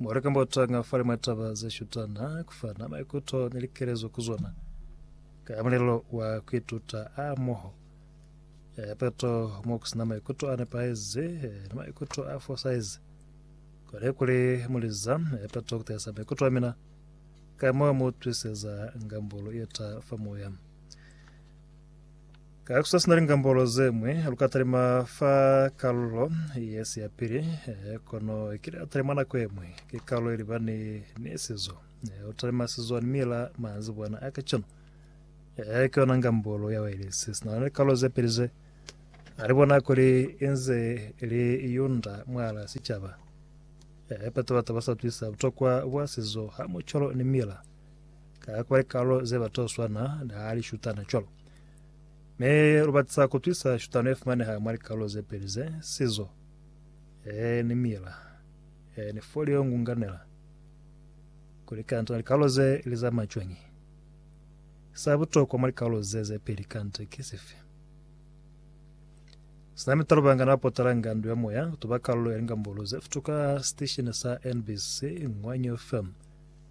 Mo lika mbotanga fa limwe taba ze shutana ku fana maikuto ni likelezo ku zona ka mulelo wa ku ituta a moho. Eh, peto mo ku sina maikuto a nepahezi eh, ni maikuto a fosaizi kone kuli muliza eh, peto ku tahisa maikuto a mina ka mo mu twiseza ngambolo yeta fa moya. Ka kusa sina lingambolo ze ñwi, lu ka talima fa kalulo ye si ya pili, eh, kono ki la talima nako ye ñwi. Ki kalulo ili ba ni, ni sizo. Eh, u talima sizo ni mila manzibwana a kacenu. Eh, ki yona ngambolo ya wailesi. Sina na likalulo ze pili ze, a li bona kuli inze li yunda mwala sicaba. Eh, pata batu ba sa twisa butokwa bwa sizo ha mucolo ni mila. ka kwa likalo ze ba to swana ni ha li shutana cwalo. Mi lu batisa ku twisa shutano ye fumaneha mwa likalo ze peli ze, sizo, e, ni mila, e, ni folio ngunganela, kuli kanta likalo ze li zama cwañi. Sa butokwa mwa likalo ze ze peli kanta ki sifi? Sina mitalo bangana ba potalanga ndu ya moya kutuba kalulo ya lingambolo ze futuka sitesheni sa NBC Ngwanyo FM.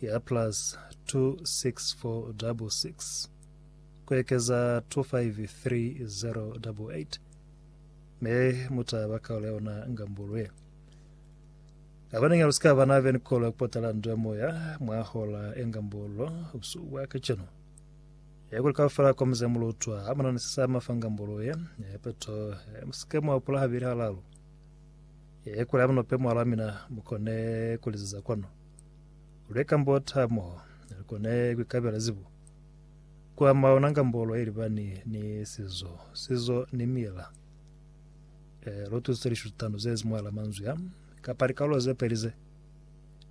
ya plus 26466 ku ekeza 253088 me mu ta ba kaulo ya yona ngambulu ye. Abaneñi lu si ka ba na veni kolo ya ku patala ndo ya moya mwa hola ya ngambulu busuku bwa kacenu. Ye kuli kaufela kwa muze mu lutwa ha mu na ni se sa mafa ngambulu ye, ye peto ye mu si ke mwa hupula habili halalu. Ye kuli ha mu no pe mwalwa mina mu kone ku liziza kwanu. Lwe kambota mo li kone ku kabela zibo kwa mauna kambolo ilibani ni sizo, sizo ni mila. E, lo tusitse lishutano zezi mwala manzwi a kapa likaulo ze peli ze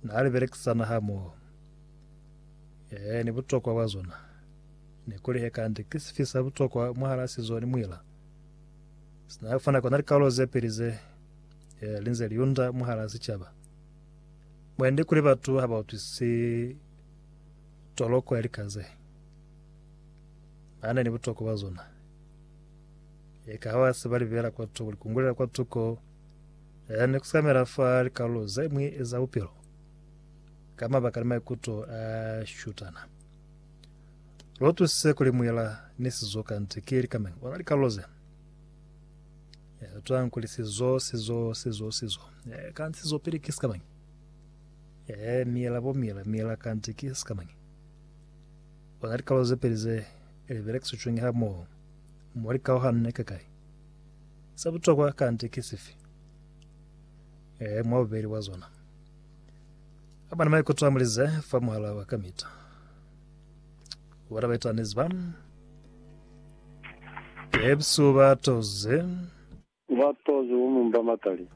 na li belekisana ha mo. E, ni butokwa bwa zona ne kuli he kande ki sifi sa butokwa mwahala sizo ni mwila. Sina fana kona likaulo ze peli ze e, linze liunda mwahala sichaba. Mwande kuli batu ha ba utwisi toloko ya lika ze ba na ni butokwa bwa zona. Eka ha ba se ba libela kwa tuko, likungulela kwa tuko ya ne kusamela fa likalulo ze mwi za bupilo ka mabaka ni maikuto a shutana. Lo tusise kuli mwila ni sizoka nti ki likameng ona likalulo ze. Eh, twa nkuli sizo, sizo, sizo, sizo. Eh, kanti sizo pili ki sikamanyi? Eh, miela bo miela, miela kanti ki sikamanyi? Ona likalo ze peli ze libelekisitšweng ha moho mo likaohano ne kakai? Sa butokwa kanti ki sifi? Eh, mwa bubeli bwa zona. Abana maikuto a mulize fa muhala wa kamita. Bona baitalukanezi ba Pepsi ba toze. Ba toze ku mumba matali.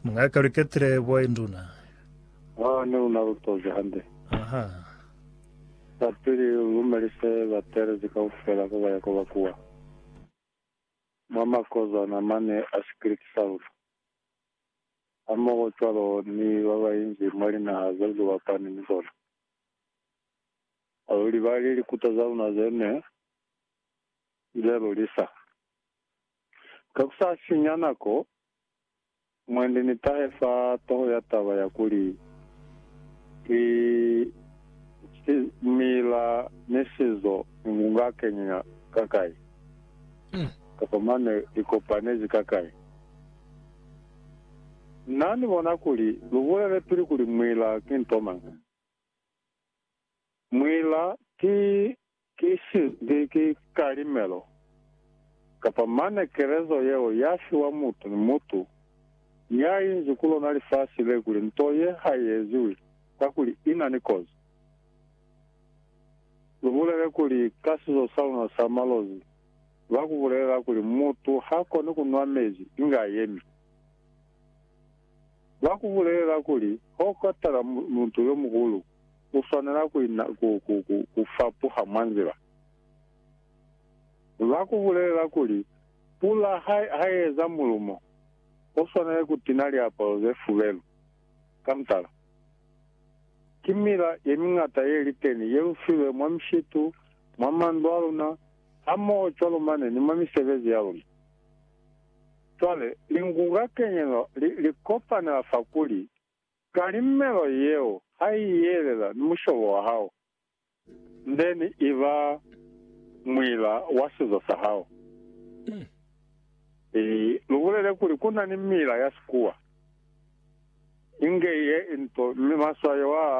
Mwa ka lu ketile bwa induna. Ha ne lu na lu toze hande. Aha. Zapili u lumelise ba teelezi kaufela ko ba ya ko ba kuwa. Mwa makozwana mane a sikiliti sa luna. Hamoho cwalo ni ba ba inzi mwa linaha zeo lu bapani ni zona. Alulibali likuta za luna ze ne li le lulisa. Ka ku sa sinya nako, mwendi ni tahe fa toho ya taba ya kuli, Ki Simila ni Sizo ni Ngunga Kenyenya Kakai? kapa Mane li Kopanezi Kakai? Na ni bona kuli lu bulele pili kuli Mwila ki nto mañi. Mwila ki kisi, ki, ki kalimelo, kapa mane kelezo yeo ya fiwa mutu ni mutu ya inzi ku lona lifasi le kuli nto ye ha i eziwi kakuli i na ni kozi. Lu bulele kuli, ka sizo sa luna sa malozi, ba ku bulelela kuli mutu ha koni ku nwa mezi inge a yemi. Ba ku bulelela kuli, Ha u katala mutu yo muhulu, u swanela ku fapuha mwa nzila. Ba ku bulelela kuli, Pula ha i eza mulumo, u swanela ku tina liapalo ze fubelu. Ka mutala, ki mila ye miñata ye li teni ye lu filwe mwa mishitu, mwa mandu a luna, hamoho cwalo mane ni mwa misebezi ya luna. Cwale, lingulwa kenyeno li, li kopanela fa kuli, ka limelo yeo, ha i yelela ni mushobo wa hao, then i ba muila wa sizo sa hao. I, lu bulele kuli ku na ni miila ya Sikuwa inge ye into, mi maswayo a,